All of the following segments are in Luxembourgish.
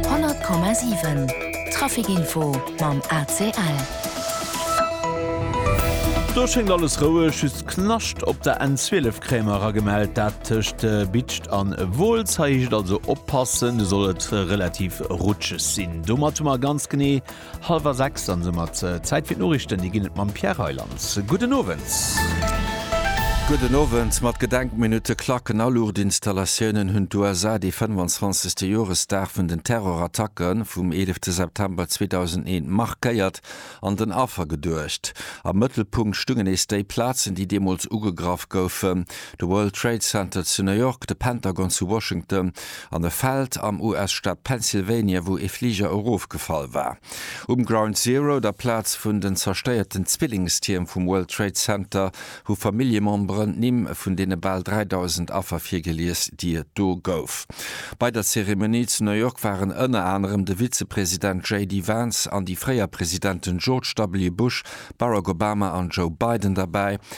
100,7 Trafic Info mam ACL. Do schéngt alles roueg, just Knascht op der N12 Kréimer ra gemellt, dat tëscht Bitscht an Wolz. Hei heescht et also oppassen, do soll et relativ rutscheg sinn. Domat hu mer ganz genee Hallwer 6, dann se mat Zäit fir d'Noriichten. Dir ginn et mam Pierre Reyland. Gudden Owend. Gudden Owend. Mat Gedenkminutte, Klacken a Luuchtinstallatioune hunn d'USA dee 25. Joresdag vun den Terrorattacke vum 11 September 2001 markéiert an den Affer geduecht. Am Mëttelpunkt stungen nees déi Plazen, déi deemools ugegraff goufen. De World Trade Center zu New York, de Pentagon zu Washington an e Feld am US-Staat Pennsylvania, wou ee Fliger erofgefall war. Um Ground Zero, der Plaz vun den zerstéierten Zwillingstierm vum World Trade Center, hu Familljememberen d'Nimm vun deene bal 3.000 Affer virgelies, déi et do gouf. Bei der Zeremonie zu New York waren ënner anerem de Vizepresident JD Vance an déi fréier Presidenten George W. Bush, Barack Obama an Joe Biden derbäi.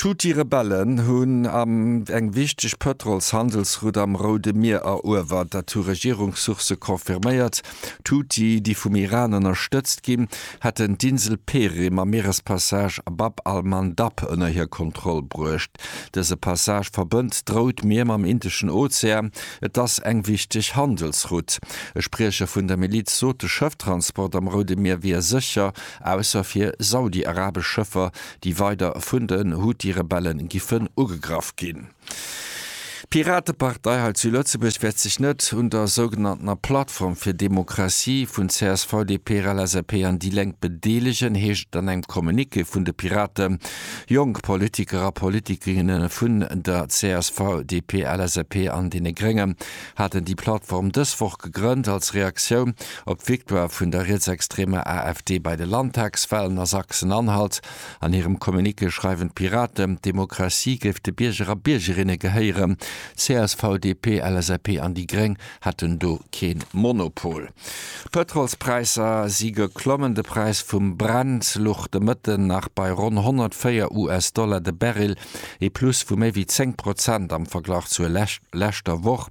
D'Houthi-Rebellen hunn am eng wichteg Pëtrols-Handelsroute am Roude Mier eruewert. Dat hu Regierungssourcë confirméiert. D'Houthi, déi vum Iran ënnerstëtzt ginn, hätten d'Insel Perim am Mierespassage Bab al-Mandab ënner hir Kontroll bruecht. Dëse Passage verbënnt d'Rout Mier mam Indeschen Ozean. Et ass eng wichteg Handelsroute. E Spriecher vun der Miliz sot, de Schëfftransport am Roude Mier wier sécher ausser fir saudi-arabesch Schëffer, déi weider vun den Houthi-Rebelle giffen ugegraff ginn. D'Piratepartei hei zu Lëtzebuerg wäert sech net un der sougenanntener Plattform fir Demokratie vun csv, DP, LSAP an déi Lénk bedeelegen, heescht et an engem Communiqué vun de Piraten. Jonk Politiker a Politikerinnen vun der csv, DP, LSAP an deene Gréngen, haten déi Plattform dës Woch gegrënnt als Reaktioun op d'Victoire vun der rietsextremer AfD bei de Landtagswalen a Sachsen-Anhalt. An hirem Communiqué schreiwen d'Piraten, d'Demokratie géif de Bierger a Biergerinne gehéieren. CSV, DP, LSAP an déi Gréng hätten do kee Monopol. D'Pëtrolspräisser si geklommen. De Präis vum Brent luch de Mëtten nach bei ronn 104 US-Dollar de Barrel, ee Plus vu méi wéi 10 Prozent am Verglach zur leschter Woch.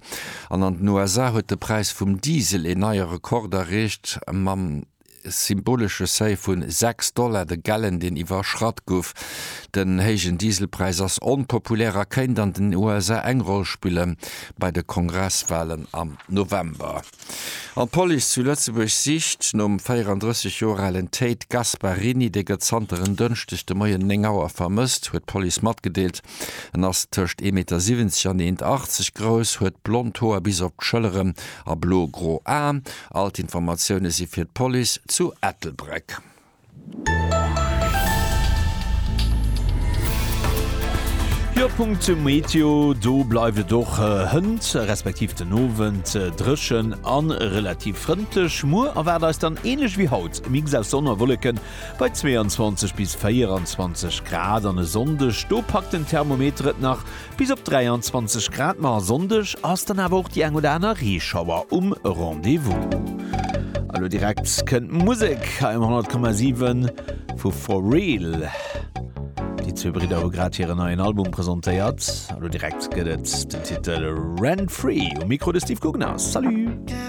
An an den USA huet de Präis vum Diesel een neie Rekord erreecht, mam symbolesche Seuil vu 6 Dollar de Gallon, deen iwwerschratt gouf. Den héijen Dieselpräis ass onpopulär a kéint an den USA eng Roll spille bei de Kongresswalen am November. An d'Police zu Lëtzebuerg sicht nom 34 Joer alen Tate Gasparini. Dee gëtt zanter en Dënschdeg de Moien 9 Auer vermësst, huet d'Police matgedeelt. En ass tëscht 1,70 Meter an 1,80 Meter grouss, huet blond Hoer bis op d'Schëlleren a blo-gro Aen. All d'Informatioune si fir d'Police zu Ettelbréck. Jo, Punkt zum Meteo, do bleift et och hënt, respektiv den Owend dréchen a relativ frëndlech. Muer erwaart eis dann ähnlech wéi haut e Mix aus Sonn a Wolleken bei 22 bis 24 Grad an e Sonndeg do packt den Thermometer et nach Bis op 23 Grad, ma Sonndeg ass dann awer och déi eng oder aner Reeschauer um Rendez-vous. A lo direkt kënnt Musek hei um 100,7 vu For Real. Déi zwee Bridder hu grad hiren neien Album presentéiert. A lo direkt gëtt et den Titel Rent Free. Um Mikro de Steve Gugner. Salut!